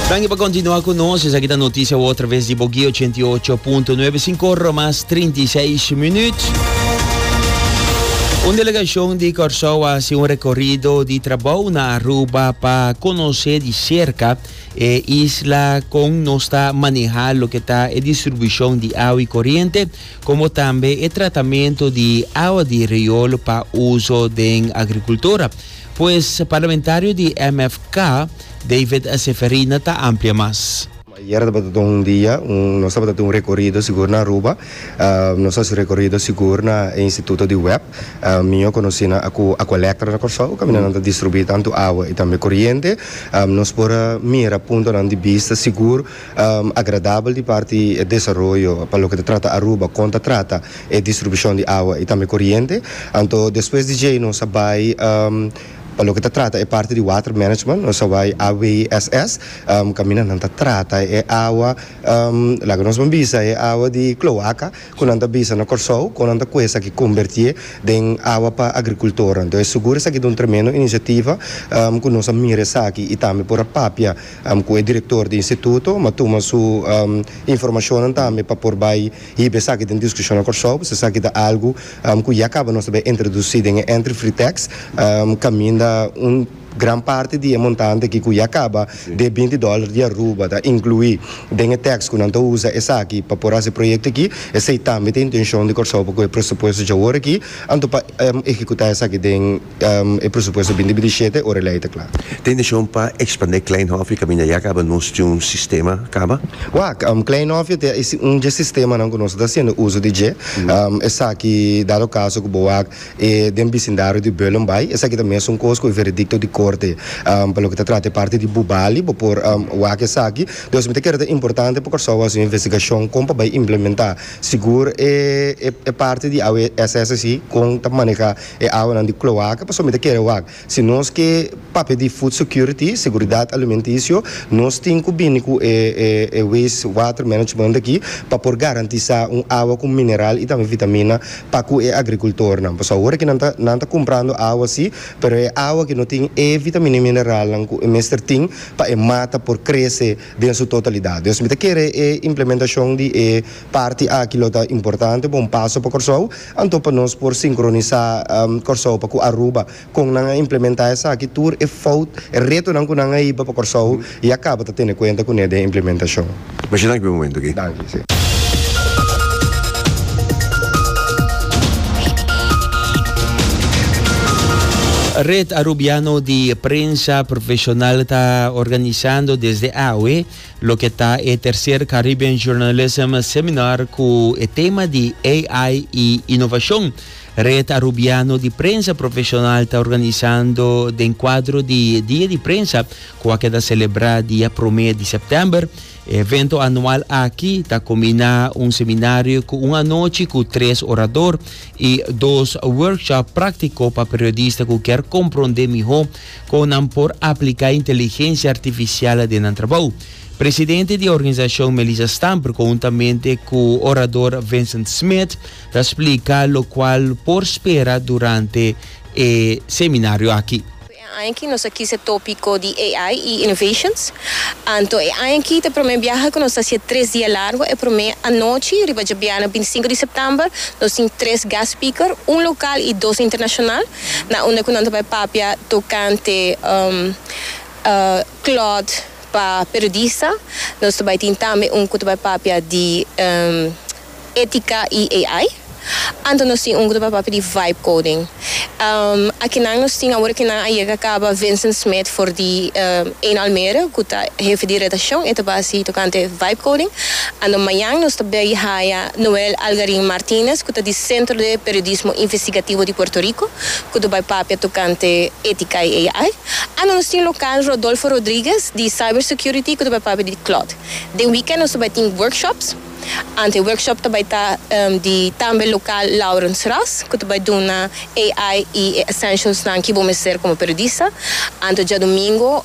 Danki pa kontinua ku nos. Esaki ta notisia wou traves di Bogi 88.9 sin korro mas 36 minüt. Un delegashon di Kòrsou a hasi un rekorido di trabou na Aruba pa konosé di serka e isla kon nos ta manehá loke ta e distribushon di awa i koriente komo tambe e tratamentu di awa di riol pa uso den agrikultura. Pues parlamentario di MFK, David Seferina ta amplia mas. Ayer tabata don un dia nos tabata tin un rekorido sigur na Aruba. Nos hasi rekorido sigur na e instituto di web. Mi a konosí nan a ku Aqualectra na Kòrsou, kaminda nan ta distribuí tantu awa i tambe koriente. Nos por a mira puntonan di bista sigur. agradabel di parti e desaroyo pa loke ta trata Aruba kon ta trata e distribushon di awa i tambe koriente. Anto despues di djei nos a bai pa loke ta trata e parti di water management, nos a bai AWSS kaminda nan ta trata e awa, laga nos ban bisa e awa di kloaka ku nan ta bisa na Kòrsou kon nan ta kuesa ki kombertié den awa pa agrikultornan. Entonces sugur esaki ta un tremendo inisiativa ku nos a mira esaki i tambe por a papia. ku e direktor di instituto, m'a tuma su informashonnan tambe pa por bai hiba esaki den diskushon na Kòrsou, pasobra esaki ta algu ku ya kaba nos ta bai introdusí den e entri free tax, kaminda un gran parti di e montante aki ku ya kaba di e binti dòler di Aruba ta inkluí den e tax ku nan ta usa esaki pa por hasi e proyekto aki, esei tambe ta intenshon di Kòrsou pa ku e presupuesto djaworakí anto pa ekekutá esaki den E presupuesto bini di bishete ora e lei ta kla. Ta inteshon pa ekspandé Klein Hofje kaminda ya kaba nos tin un sistema kaba? Wak, Klein Hofje ta e un dje sistemanan ku nos ta hasiendo uso di dje. Esaki, dado kaso ku bo wak e den bisindario di Beulen bai, esaki ta mes un kos ku e veredikto di korte. Pa loke ta trata e parti di Bubali, bo por wak esaki. Dus mi ta kere ta importante pa Kòrsou hasi un investigashon kon pa bai implementá sigur e parti di awe SSC kon ta manehá. E awanan di cloaca pasobra mi ta kere wak. Si nos ke papia di food security, seguridad alimenticio, nos tin cu bini cu e e waste water management aki pa por garantisa un awa cu mineral y tambe vitamina pa cu e agricultornan. Pasobra awor aki nan ta nan ta cumprando awa si, pero e awa aki no tin e vitamina y mineralnan cu e mester tin pa e mata por crece den su totalidad. Dios mi ta kere e implementacion di e parti aki lo ta importante, bo un paso pa Corsou Anto pa nos por sinkronisá Kòrsou pa ku Aruba, kon nan a implementá esaki? Tur e fout, e retonan ku nan a hiba pa Kòrsou ya kaba ta tene kuenta kuné den e implementashon. Masha danki pa e momentu aki. Danki, si. Red Arubiano di Prensa Profesional ta organisando desde awe, Loke ta e tercer Caribbean Journalism Seminar cu e tema di AI y Innovacion, Red Arubiano di Prensa Profesional ta organisando den cuadro di Dia di Prensa cu a keda celebra dia prome di September. E evento anual aki ta cumbina un seminario cu un anochi cu tres orador y dos workshop practico pa periodista cu kier comprende miho Kon nan por apliká inteligensia artifisial den nan trabou? Presidente di e organisashon Melissa Stamper kountamente ku orador Vincent Smith ta splika lokual por spera durante e seminario aki. E aña aki nos a kis e tópiko di AI i innovations. Anto e aña aki ta e promé biaha ku nos ta hasi e tres dia largu. E promé anochi, riba djabiana bintisinku di sèptèmber, nos tin tres guest speaker, un lokal i dos internashonal. na unda cu nan ta bay papia tocante cloth pa periodista. Nos ta bay tin tambe un cu ta bay papia di etica y AI. Anto nos tin un cu ta bay papia di vibe coding. Akinan nos tin awor cu nan a yega caba Vincent Smith for di Eén Almere cu ta hefe di redaccion. E ta bay haci tocante vibe coding. Anto mañan nos ta bay haya Noel Algarin Martinez cu ta di Centro de Periodismo Investigativo di Puerto Rico cu ta bay papia tocante etica y AI. Ano nos tin local Rodolfo Rodriguez di Cyber Security cu ta bay papia di Cloud. Den weekend nos ta bay tin workshops. Ante workshop ta bay ta di tambe local Laurens Ras cu ta bay duna AI y e essentials nan ki bo mester como periodista. Anto djadomingo